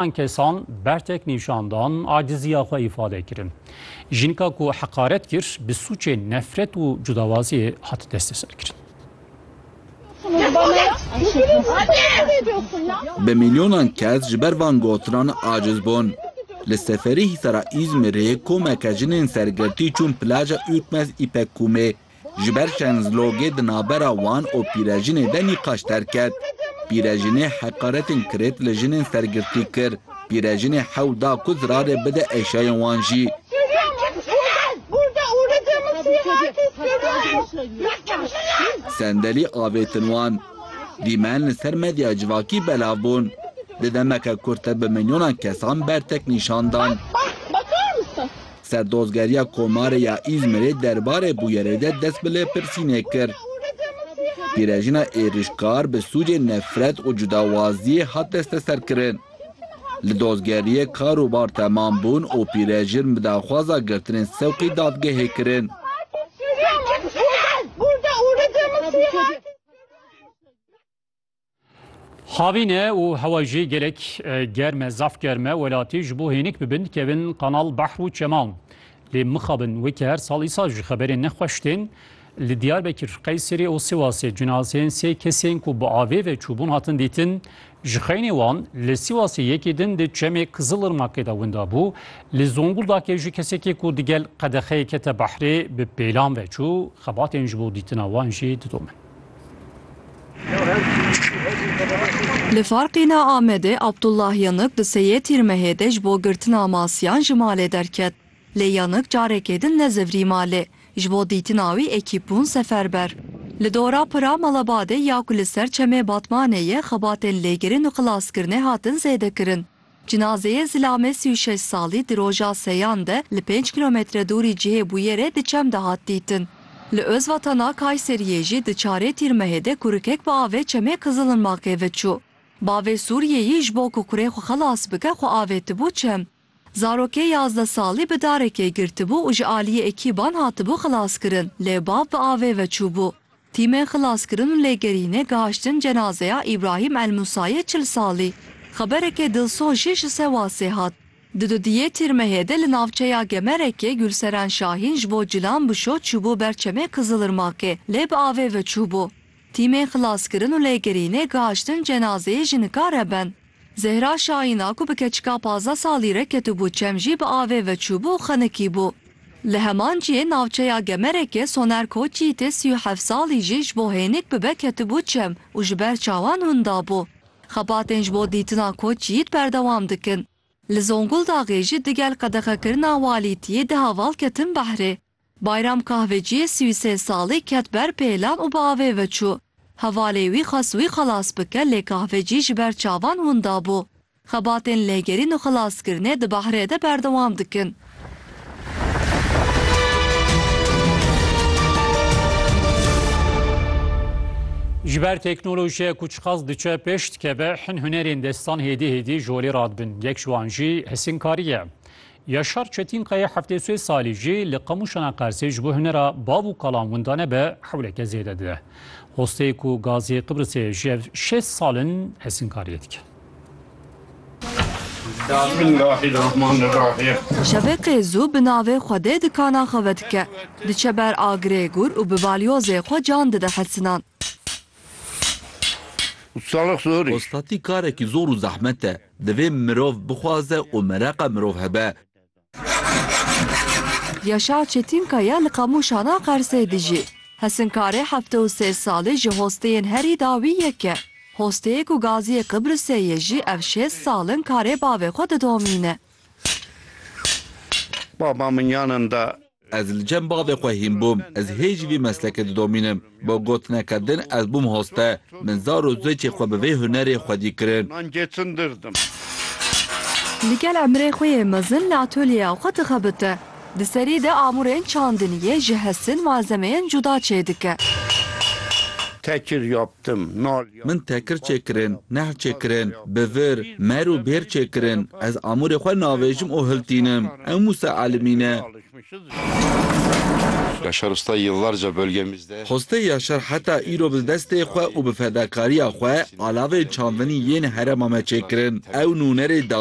An kesan bertek nîşan dan, aciziya xwe îfade kirin. Jinka ku heqaret kir, bi sûcê nefret û cudawaziyê hat desteserkirin. Bi milyonan kes ji ber van gotinan aciz bûn. Li seferî hîsara Îzmîrê komeke jinên sergirtî çûn plaja Ürkmez Îpek Kumê. Ji ber şernzlogê di navbera wan û pîrejinê de nîqaş derket. Pîrejinê heqaretên kirêt li jinên ser girtî kir. Pîrejinê hewl da ku zirarê bide eşyayên wan jî. Sendelî avêtin wan. Dîmen li ser medya civakî belav bûn. Di demeke kurt de bi milyonan kesan bertek nîşan dan. Serdozgeriya Komarê ya Îzmîrê derbarê bûyerê de dest bi lêpirsînê kir. Pîrejina êrîşkar bi sûcên nefret û cudawaziyê hat desteserkirin. Li dozgeriyê kar û bar temam bûn û pîrejin bi daxwaza girtinên sewqî dadgehê kirin. Xavîne û hewa jî gelek germ e, zaf germ e. Welatî ji bo hênik bibin dikevin qanal behr û çeman. Lê mixabin weke her sal îsa ji xeberên nexweş tên. Li Diyarbekir, Qeyserê û Sîwasê cinazeyên sê kesên ku bi avê ve çûbûn hatin dîtin. Ji xeynê wan li Sîwasê yekê din di çemê Kizilirmakê de winda bû. Li Zonguldakê jî kesekê ku digel qedexeyê kete behrê bi pêlan ve çû. Xebatên ji bo dîtina wan jî didomin. Li Farqîna Amedê Abdullah Yanık di seyê Tîrmehê de ji bo girtina masiyan ji malê derket. Lê Yanık carekê din nezivrî malê. Ji bo dîtina wî ekîp bûn seferber. Li dora Pira Malabadê ya ku li ser çemê Batmanê ye xebatên lêgirin û xilaskirinê hatin zêdekirin. Cinazeyê zilame sî û şeş salî di roja seyan de li pênc kîlometre dûrî cihê bûyerê di çem de hat dîtin. Li Ozvatana Kayseriyê jî di çarê Tîrmehê de kurikek bi avê çemê Kızılırmakê ve çû. Bavê Sûriyeyî ji bo ku kurê xwe xelas bike xwe avêtibû çem. Zarokê yazdeh salî bi darekê girtibû û ji aliyê ekîban hatibû xelaskirin lê bav bi avê ve çûbû. Tîmên xilaskirin û lêgerînê gihiştin cenazeya Îbrahîm El-Musayê çil salî. Xeberekê dilsoz jî ji Sewasê hat. Di dudiyê Tîrmehê de li navçeya Gemerekê Gulseren Şahîn ji bo cilan bişo çûbû ber çemê Kizilirmakê lê bi avê ve çûbû. Tîmên xilaskirin û lêgerînê gihiştin cenazeyê ji nika re ben. Zehra Şahîna ku bi keçika pazdeh salî re ketibû çem jî bi avê ve çûbû û xenikîbû. Li heman cihê navçeya Gemerekê Soner Koçî tê sî û heft salî jî ji bo hênik bibe ketibû çem û ji ber çawan winda bû. Xebatên ji bo dîtina Koçî berdewam dikin. Li Zonguldaxê jî digel qedexekirina walîtiyê di heval ketin behrê. Bayram kahveciyê sî û sê salî ket ber pêlan û bi avê veçû. Hevalê wî xwest wî xelas bike lê kahvecî ji ber çavan winda bû. Xebatên lêgerîn û xelaskirinê di behrê de berdewam dikin. Ji ber teknolojiya ku çiqas diçe pêş dikeve, hin hunerên destan hêdî hêdî ji holê radibin. Yek ji wan jî hisînkarî ye. Yaşar Çetînkayê heftê sê salî jî li Qamûşana Qersê ji bo hunera bav û kalan winda nebe hewleke zêde dide. Hosteyê ku gazê Qibrisê ji hev şêst sal in hesînkariyê dike. Şeveqê zû bi navê Xwedê dikana xwe vedike. Diçe ber agirê gûr û bi balyozê xwe can dide hesinan. Hostatî karekî zor û zehmet e. Divê mirov bixwaze û mereqa mirov hebe. Yaşar Çetinkaya li Qamûşana Qersê dijî. Hesinkarê heftê û sê salî ji hosteyên herî dawî yek e. Hosteyê ku Gaziyê Qibrisê ye jî ev şêst sal in karê bavê xwe didomîne. Baba min yanên da Ez li cem bavê xwe hîn bûm, ez hê jî vî meslekê didomînim. Bo gotineke din ez bûm hoste. Min zar û zokê xwe bi vê hunerê xwedî kirin. Li gel emirê xwe yê mezin li atolyeya xwe dixebite. Di serî de amûrên çandiniyê ji hestin malzemeyên cuda çêdike. Min tekir çêkirin, nehl çêkirin, bi vir, mer û bêr çêkirin. Ez amûrê xwe navêjim û hiltînim. Ew Mûsa Elimî ne. Xwestê Yaşar heta îro bi destê xwe û bi fedakarîya xwe alavên çandinî yên herêma me çêkirin. Ew nûnerê dawî.